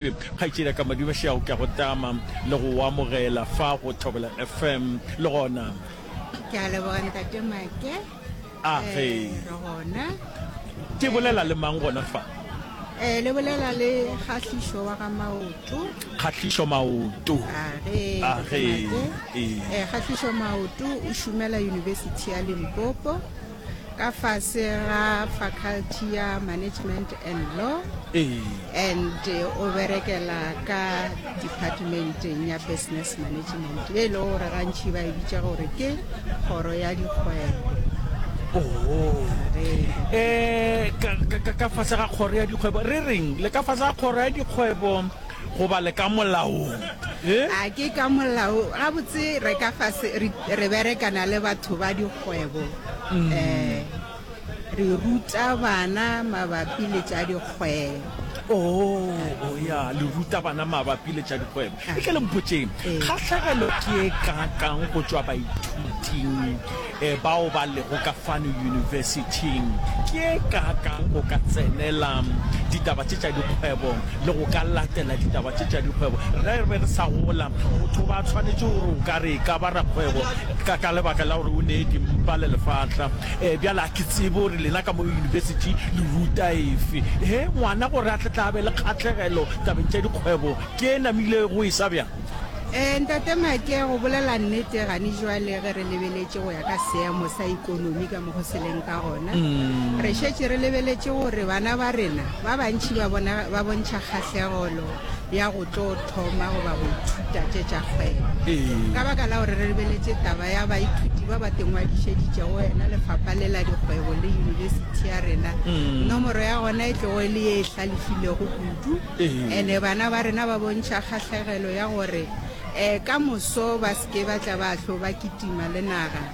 Kgaetšediaka Madibashiago ke a go tama le go go amogela fa go Thobela FM le gona. Ke a leboga Ntate Make. A eh, ge. Re gona. Ke bolela le mang gona fa? Eh le bolela le Kgahlišo wa ga Maoto. Kgahlišo Maoto. A ge. A ge. Eh Kgahlišo Maoto o šomela University ya Limpopo. ka fase ga Faculty ya Management and Law and o berekela ka departmenteng ya Business Management ye e lego gore gantši ba e bitša gore ke kgoro ya dikgwebo um ka fase ga kgoro ya dikgwebo re reng le ka fase ga kgoro ya dikgwebo goba le ka molaong a ke ka molao gabotse re ka fase re berekana le batho ba kgwebo um re ruta bana mabapi le tša dikgwebo oo ya le ruta bana mabapi le tša dikgwebo e tle le mpotšeng kgahlegelo ke e kakang go tšwa baithuting um bao ba lego ka fano yunibesithing ke e kakang go ka tsenela ditaba tše tša dikgwebo le go ka latela ditaba tše tša dikgwebo. Ge re be re sa gola, motho ba tshwanetše gore o ka re e ka ba rakgwebo ka ka lebaka la gore o nee dimpa le lefahla. E, bjale a ke tsebe gore lena ka mo yunibesithi le ruta efe. He, ngwana gore a tle tla be le kgahlegelo tabeng tša dikgwebo ke e namilego, e sa bjang? E, Ntate Maake, go bolela nnete, gane jwale ge re lebeletše go ya ka seemo sa ekonomi ka. Go seleng ka gona, re šetše re lebeletše gore bana ba rena ba bantši ba bona ba bontšha kgahlegelo ya go tlo thoma goba go ithuta tše tša kgwebo. Ka baka la gore re lebeletše taba ya baithuti ba ba tengwadišeditšego wena, lefapha le la dikgwebo le yunibesithi ya rena, nomoro ya gona e tlogo e le ye e hlalefilego kudu. And-e bana ba rena ba bontšha kgahlegelo ya gore um ka moso ba se ke ba tla ba hlo ba kitima le naga.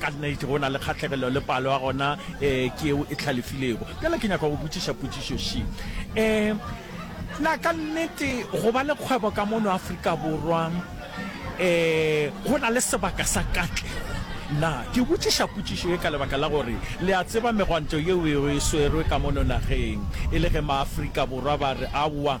Ka nnete, go na le kgahlegelo le palo ya gona e, ke yeo e hlalefilego. Bjale ke nyaka go botšiša potšišo še. E, na ka nnete go ba le kgwebo ka mono Afrika Borwa e, go na le sebaka sa katlego? Na ke botšiša potšišo ye ka lebaka la gore le a tseba megwanto yeo e swerwe ka mono nageng e le ge Maafrika Borwa ba re aowa,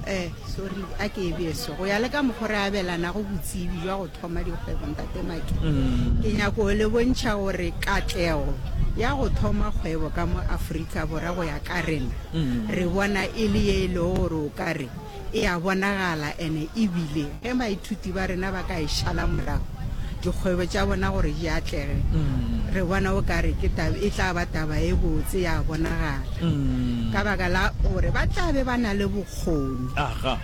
Ee, sorry, a ke e beso. Go ya le ka mokgwa re abelanago botsebi jwa go thoma dikgwebo, Ntate Maki, mm. ke nyako go le bontšha gore katlego ya go thoma kgwebo ka mo Afrika Bora go ya ka rena, mm. re bona e le ye e lego gore o ka re e a bonagala ene ebile Ge baithuti ba rena ba ka e šala morago dikgwebo tša bona gore di atlege, re bona o ka re ke taba e tla ba taba e botse ya bonagala ka baka la gore ba tla be ba na le bokgoni,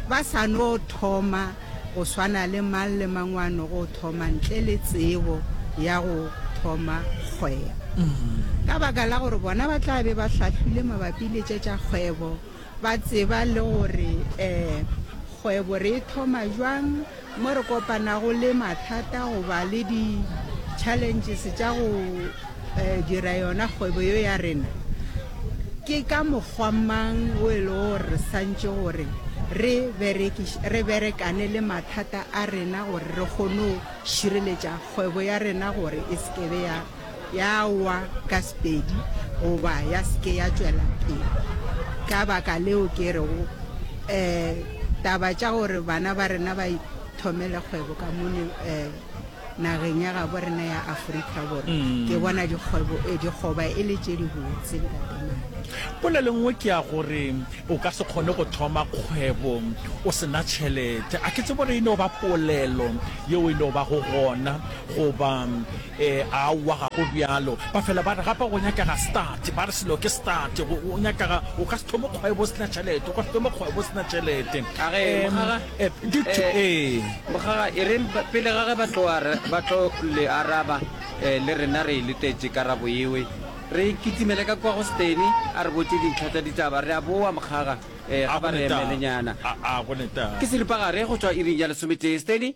ba sa no thoma go swana le mang le mang wa no go thoma ntle le tsebo ya go thoma kgwebo. Ka baka la gore bona ba tla be ba hlahlwile mabapi le tše tša kgwebo, Ba tseba le gore kgwebo re e thoma jwang, mo re kopanago le mathata goba le di-challenges tša go dira yona kgwebo yo ya rena. Ke ka mokgwa mang o e lego gore re swantše gore re re berekane le mathata a rena gore re kgone go šireletša kgwebo ya rena gore e se ke be ya. ya wa ka sepedi goba ya se ke ya tšwela pele. Ka baka leo ke rego um taba tša gore bana ba rena ba ithomele kgwebo ka mone um nageng ya gabo rena ya Afrika Borwa, mm. ke bona dikgwebo eh, dikgoba e le tše dibotse ntatemane. Polelo nngwe ke ya gore o ka se kgone go thoma kgwebo o sena tšhelete. A ke tsebo re e no ba polelo yeo e no ba go gona goba Ee, aowa, ga go bjalo. Ba fela ba re, Gape go nyakega start. Ba re, Selo ke start. Go, go nyakega, o ka se thome kgwebo o se na tšhelete, o ka se thome kgwebo o se na tšhelete. Ka ge, Ee, mogara, ee, di tho- ee, ee. Mogara, e reng ba- pele ga ge ba tlo, ara, ba tlo le araba, eh, le rena re e letetše karabo yewe. Re kitimele ka kua go Steny, a re botše dintlha tša ditaba. Re a boa, mogara, eh, A ge go ba re netaba. emelenyana. A, a go netaba. Ke seripagare go tšwa iring ya lesometee, Steny.